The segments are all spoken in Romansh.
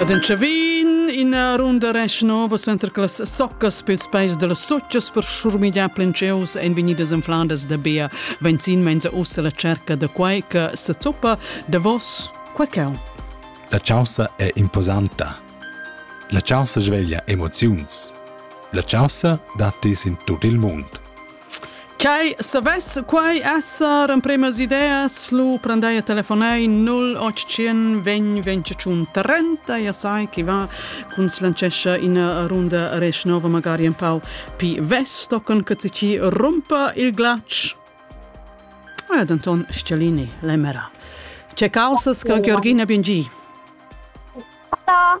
Ed entschavin ina runda rest nova center che las soccas pels peis da las suttas per schurmigliar plenceus ein vegnidas infladas da bia benzin menza ussa la cerca da quai che sa zuppa davos quai cau. La chaussa è imposanta. La chaussa sveglia emoziuns. La chaussa dat dis in tut il mund. Quai savess quai esser empremas ideas lu prendei a telefonei 0800 20 25 30 e sai chi va cun slancescha ina runda resch nova magari un pau pi vesto con che ci rumpa il glatsch. Ed Anton Schialini, l'emera. Ce causas che Georgina Bingi? Hola.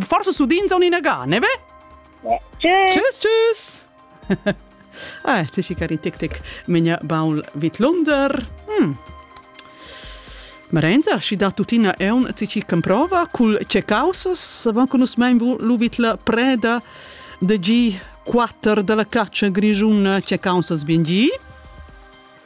Forse sudin son inagà, ne ve? Tschüss! Tschüss, tschüss! ah, ti si cari tic tic menia baul vidlunder. Hm. Marenza, si da tutina eun ti ci comprova cul ce causas, van con us mein luvit la preda de gi 4 della caccia grigiuna ce causas bien gi.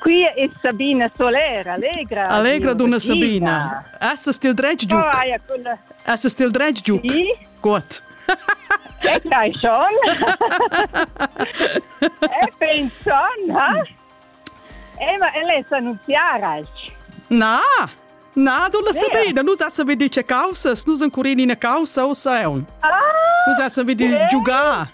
Qui es Sabina Solera, allegra. Allegra dunna Sabina. Essas til dretg giuc? Oh, Essas til dretg giuc? Sì. Gut. E dai schon. e penson, ha? Eh, ma ella è annunziara. Na, na, dunna Sabina, nus assam vi dice causas, nus ancurin ina causa o saun. Ah, nus assam vi di giugar.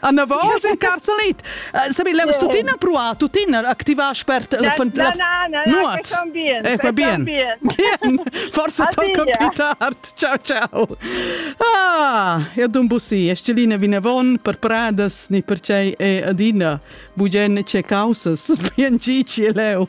Anavos in carcelit. Sabi, leu tuttina pruar, tuttina activar spert la nuot. Ecco bien. Bien. Forse tocca più tardi. Ciao ciao. Ah, e dun bussi, estelina vinavon per pradas ni per cei e adina bugen ce causas bien gici leu.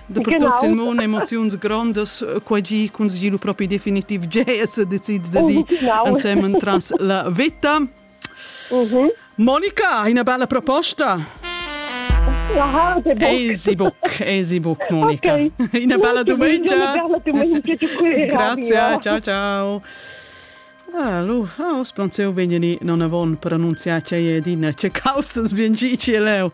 Dapertut sin mon emoziuns grondas, quai gi consigli lu propi definitiv gea se decid de di ensemen tras la vita. Mhm. Monica, una bella proposta. Esibuc, Esibuc, Monica. Okay. Una bella domenica. Una bella domenica. Grazie, ciao ciao. Ah, lu, ah, os planceu vegni ni non avon pronunziar ce è din ce causas bien gi ci leo.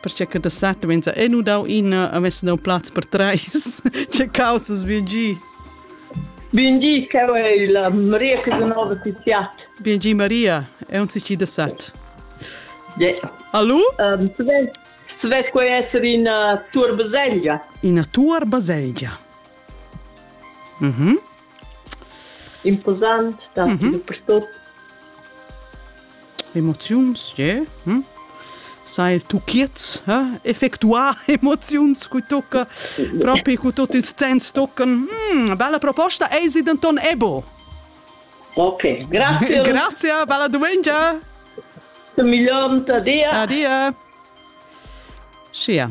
perché che da sata venza e nu dau ina, avesse dau plaz per treis. che causas bien gi. Bien gi, che è la Maria Casanova Tiziat. Bien gi Maria, è un cici da sat. Yeah. Allo? Um, tu vedi, tu vedi qual essere una tua baselgia? Una tua baselgia. Mhm. Mm Imposant, datti dapertut. Emoziuns, yeah. Hm? Sai il tucchiez, eh? effectuar emoziuns cu tocca, propi cu tot ils zenns toccen. Mm, bella proposta, ei sie denton ebo. Ok, grazie. Grazie, bella domenica. Miglior dia. Adia. Sia.